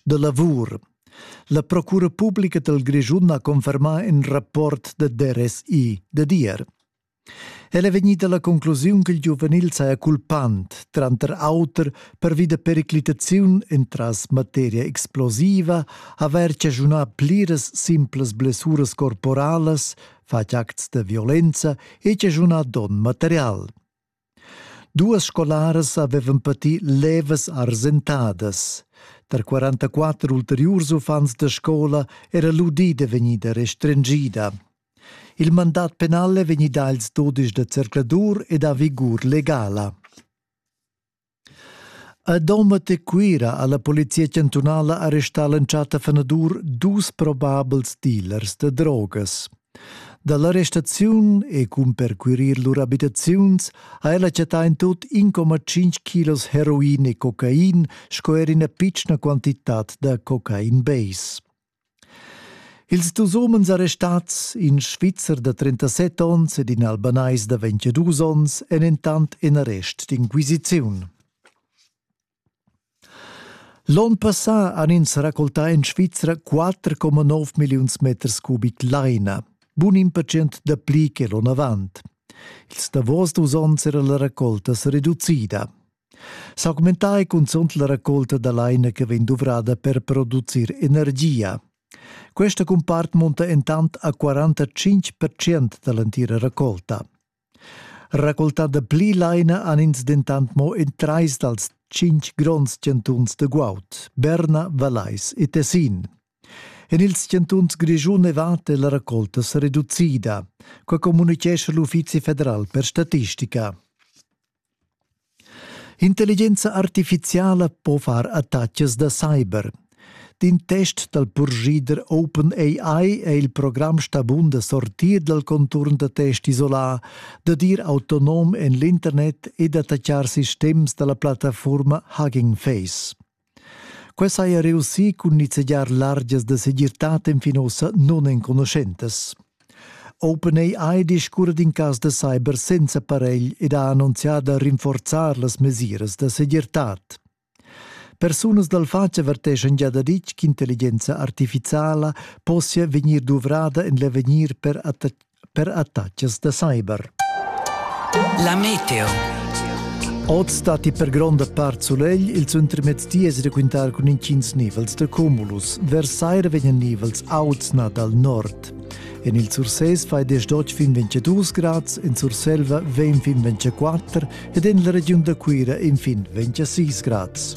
da lavur. La Procura publica del Grischun ha confermà in rapport de DRSI de dir. El è vegnita la conclusiun che il giuvenil saja culpant, tranter auter pervi da periclitaziun entras materia explosiva, aver cagiunà pliras simplas blessuras corporalas, fatg acts de violenza e cagiunà don material. Duas scolaras havevan pati levas arsentadas. Tar 44 ulteriurs uffants da scola era l'udida vegnida restringida. Il mandat penal è vegnì dà ils dudisch da zercladur ed ha vigur legala. A Domat e Cuira ha la polizia chantunala arrestà l'entschatta fanadur dus probabels dealers da drogas. Da l'arrestaziun e cun percurir lur abitaziuns ha ella chattà in tot 1,5 kilos heroin e cocain sco er ina pitschna quantitad da cocain base. Ils dus umens arrestats, in Svizzer da 37 onns ed in Albanais da 22 onns, èn entant en arrest d'inquisiziun. L'onn passà han ins raccoltà en Svizra 4,9 milliuns meters cubic laina, bun in percent dapli che l'onn avant. Ils davos dus onns era la racolta sa reducida. S'augmentar è cunzunt la raccolta da laina che vegn duvrada per producir energia. Questa cumpart munta intant a 45% da l'entira raccolta. Raccoltar da pli laina han ins dentant mo in trais dals cinc gronds chantuns da guaud, Berna, Valais e Tessin. En ils chantuns Grischun e Vatt è la raccolta reducida, qua communicescha l'Uffizi federal per statistica. Intelligenza artificiala po far attacas da cyber. D'in test dal purschida OpenAI è il program stà bun da sortir dal conturn da test isolà, dad ir autonom en l'internet e d'attaccar sistems da la plattafurma Hugging Face. Quei saja reussì cun nizzegiar largias da segirtad enfin ussa nunenconuschentas. OpenAI discurra d'in cas da cyber senza paregl ed ha annunzià da rinforzar las mesiras da segirtad. Persunas dal fatg averteschan gia daditg ch'intelligenza artificiala possia vegnir duvrada en l'avegnir per per attaccs da cyber. La meteo. Oz datti per gronda part sulegl, ils intermezdies raquintar cun intgins nivels da cumulus. Vers saira vegnan nivels auts na dal nord. En il Surses fai desdotg fin 22 grads, en Surselva vegn fin 24 ed en la regiun da Cuira in fin 26 grads.